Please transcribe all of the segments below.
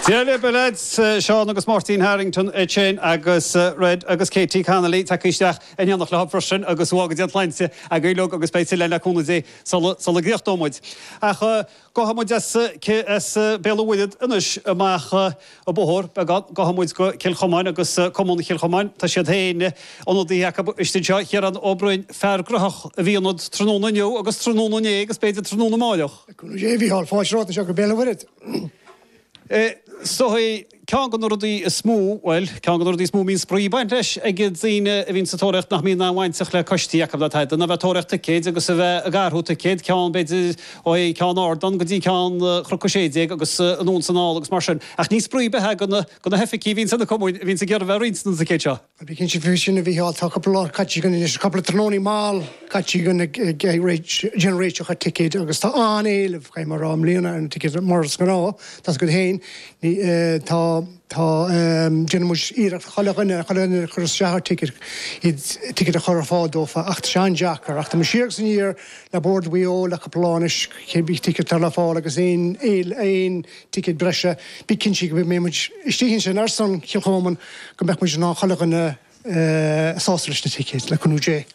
Dia libh a leaids, Seán agus Máirtín Harrington is Shane agus Red agus Katie Connolly tagtha isteach in éineacht le chéile freisin agus go bhfága Dia an tsláinte agaibh uilig agus beidh tuilleadh le cúnamh Dé sula gcríochnóimid. Ach gabhfaidh muid as Béal an Mhuirthead anois amach. An bóthar beagán, gabhfaidh muid go Cill Chomáin agus Cumann Chill Chomáin, tá siad féin, ionadaithe acu istigh anseo, Ciarán Ó Broin, fear gnaitheach a bhí ionat tráthnóna inniu agus tráthnóna inné agus b'fhéidir tráthnóna amárach. Conas é a Mhícheáil, fáilte romhat anseo go Béal an Mhuirthead. So ceann de na rudaí is mó, bhuel, ceann de na rudaí is mó a mbíonn spraoi ag baint leis ag daoine a bhíonn sa tóraíocht nach mbíonn an-bhainteach le coistí acu ná tada ná bheith ag tóraíocht ticéid agus a bheith ag athrú ticéad, ceann, b'fhéidir, ó cheann ardán go dtí ceann Cnoc 16 agus anonn is anall agus mar sin ach ní spraoi ar bith é do na hoifigigh a bhíonn sna cumainn a bhíonns ag iarraidh bheith ag roinnt na dticéad seo. Bí cinnte faoi sin a Mhícheáil, tá cúpla lá caite againn anois, cúpla tráthnónaí mall caite againn ag déanamh réiteach ticéid agus tá an-éileamh, caithfidh mé a rá, i mbliana ar na ticéid. Mar is gnáth, tá's agat féin, tá, déanann muid iarracht chuile dhuine, chuile dhuine a chuireas isteach ar ticéad, iad ticéid a chur ar fáil dófa ach tá sé an-deacair ach tá muid siar agus aniar, le Bord Mhaigh Eo le cúpla lá anois cé bith ticéad atá le fáil agus aon ticéad breise bí cinnte go mbeidh muid istigh ansin ar son Chill Chomáin go mbeadh muid in ann chuile dhuine a shásamh leis na ticéid le cúnamh Dé.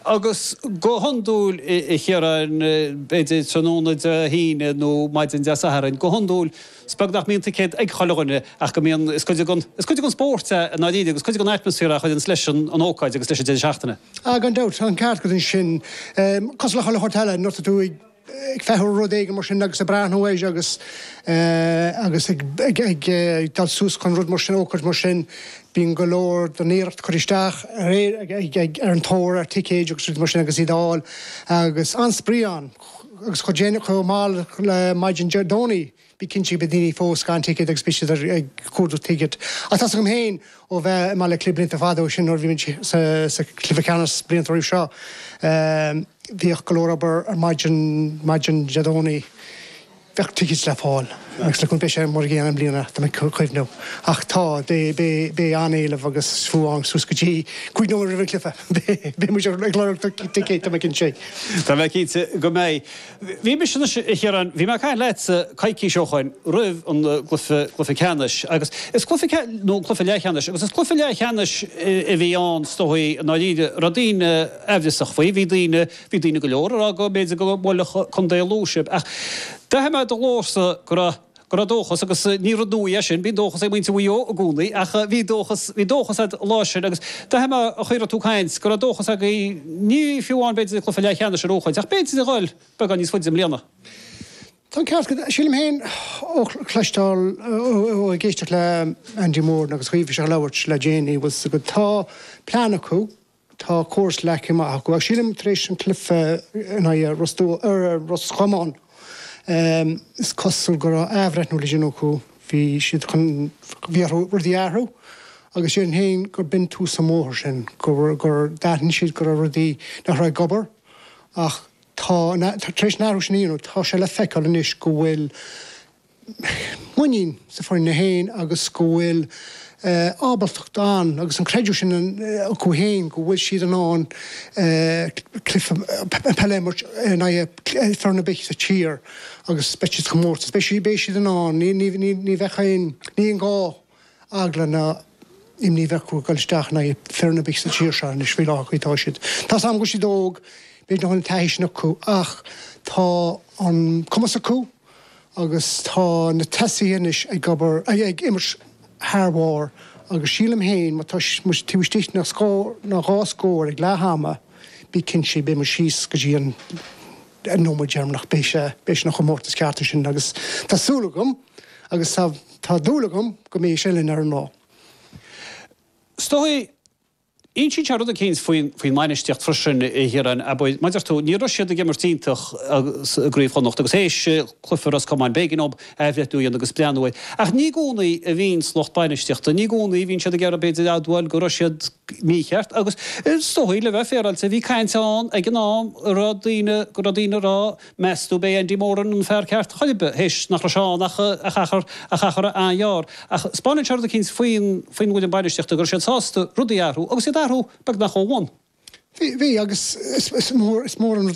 Agus go hiondúil a Chiaráin b'fhéidir tráthnóna Dé hAoine nó maidin Dé Satharn go hiondúil is beag nach mbíonn ticéad ag chuile dhuine ach go mbíonn, is cuid den spórt é i ndáiríre agus cuid den atmaisféar a chuireanns leis an ócáid agus leis an deireadh seachtaine. Ah, gan dabht, tá an ceart agat ansin. Cosúil le chuile shórt eile, nuair atá tú ag feitheamh ar rud éigin mar sin agus ag breathnú air agus agus ag dul suas chun rud mar sin, ócáid mar sin, bíonn go leor den iarracht curtha isteach ar an tóir ar ticéid agus rudaí mar sin agus iad a fháil agus an-spraoi ann agus chomh mall le maidin Dé Domhnaigh, Bí cinnte go mbeidh daoine fós gan ticéad agus beidh siad ag cuardach ticéad. Ach tá's agam féin ó bheith i mBaile Átha Cliath blianta fada ó sin nuair a bhí muid sa chluiche ceannas blianta roimh seo, bhíodh go leor obair ar maidin, maidin Dé Domhnaigh, bheadh ticéid le fáil agus look beidh sé mar a gcéanna i mbliana tá mé ag cuimhniú. Ach tá, beidh an-éileamh agus fiú amháin suas go dtí cúig nóiméad roimh an cluiche beidh muid ag lorg ticéid tá mé cinnte. Tá mé cinnte go mbeidh. Bhí mise anois, a Chiaráin, bhí mé ag caint leatsa coicís ó shoin roimh an gcluiche, cluiche ceannais agus is cluiche ceannais, nó an cluiche leathcheannais, agus is cluiche leathcheannais a bhí ann is dóigh i ndáiríre, raibh daoine aimhreasach faoi, bhí daoine, bhí daoine go leor ag rá go mb'fhéidir go mbuailfeadh Contae Lú sibh ach d'aithin mé i do ghlórsa go raibh, go raibh dóchas agus ní rud nua é sin, bíonn dóchas ag muintir Mhaigh Eo i gcónaí ach bhí dóchas, bhí dóchas a'd lá sin agus d'aithin mé an chaoi a raibh tú ag caint go raibh dóchas againn ní fiú amháin b'fhéidir an cluiche leathcheannais a shroichint ach b'fhéidir a dhul beagán níos faide i mbliana. Tá an ceart agat. Sílim féin ó chloisteáil, ó ag éisteacht le Andy Moran agus an chaoi a bhí sé ag labhairt le déanaí, bhfuil 's agat, tá plean acu, Tá córas leagtha amach acu ach sílim tar éis an cluiche in aghaidh Ros, Ros Comáin, is cosúil go raibh athbhreithniú le déanamh acu. Bhí siad chun rudaí a athrú agus sílim féin gur b'in tús an bhóthair sin, gur d'aithin siad go raibh rudaí nach raibh ag obair ach tá, tar éis an athrú sin a dhéanamh, tá sé le feiceáil anois go bhfuil muinín san fhoireann féin agus go bhfuil ábaltacht ann agus an creideamh sin acu féin go bhfuil siad in ann cluiche peile a imirt in aghaidh foireann ar bith sa tír agus beidh siad sa chomórtas, beidh siad in ann, ní bheidh aon, ní bheidh aon ghá. eagla ná imní a bheith acu ag dul isteach in aghaidh foireann ar bith sa tír seo anois. Faoi láthair, OK, tá siad, tá 's a'm go bhfuil siad óg, b'fhéidir nach bhfuil an taithí sin acu ach tá an cumas acu agus tá na tosaithe anois ag obair, ag imirt thar bharr agus sílim féin má tá muid taobh istigh de scór nó dhá scór ag leath ama bí cinnte beidh muid síos go dtí an an nóiméad deireanach beidh, beidh sé ina chomórtas ceart ansin agus tá súil agam agus tá tá dúil agam go mbeidh sé linn ar an lá. Is dóigh, insíonn sé rud eicínt faoin faoin mbainistíocht freisin a Chiaráin, bhuel, mar a deir tú, ní raibh siad ag imirt iontach i gCraobh Chonnacht agus théis cluiche Ros Comáin b'éigean dóibh athbhreithniú a dhéanamh agus breathnú air, ach ní i gcónaí a bhíonns lucht bainistíochta, ní i gcónaí a bhíonn siad ag iarraidh b'fhéidir admháil go raibh siad, mícheart agus is dóigh, le bheith féaráilte, bhí caint ann ag an am a raibh daoine, go raibh daoine ag rá, meastú ab é Andy Moran an fear ceart chor ar bith, théis nach raibh sé ann ach achar, ach achar an-ghearr. Ach 'speáineann sé rud eicínt faoin, faoin bhfoireann bainistíochta, go raibh siad sásta rudaí a athrú agus iad a athrú beagnach ó bhonn. Bhí, bhí agus is, is mór, is mór an rud é.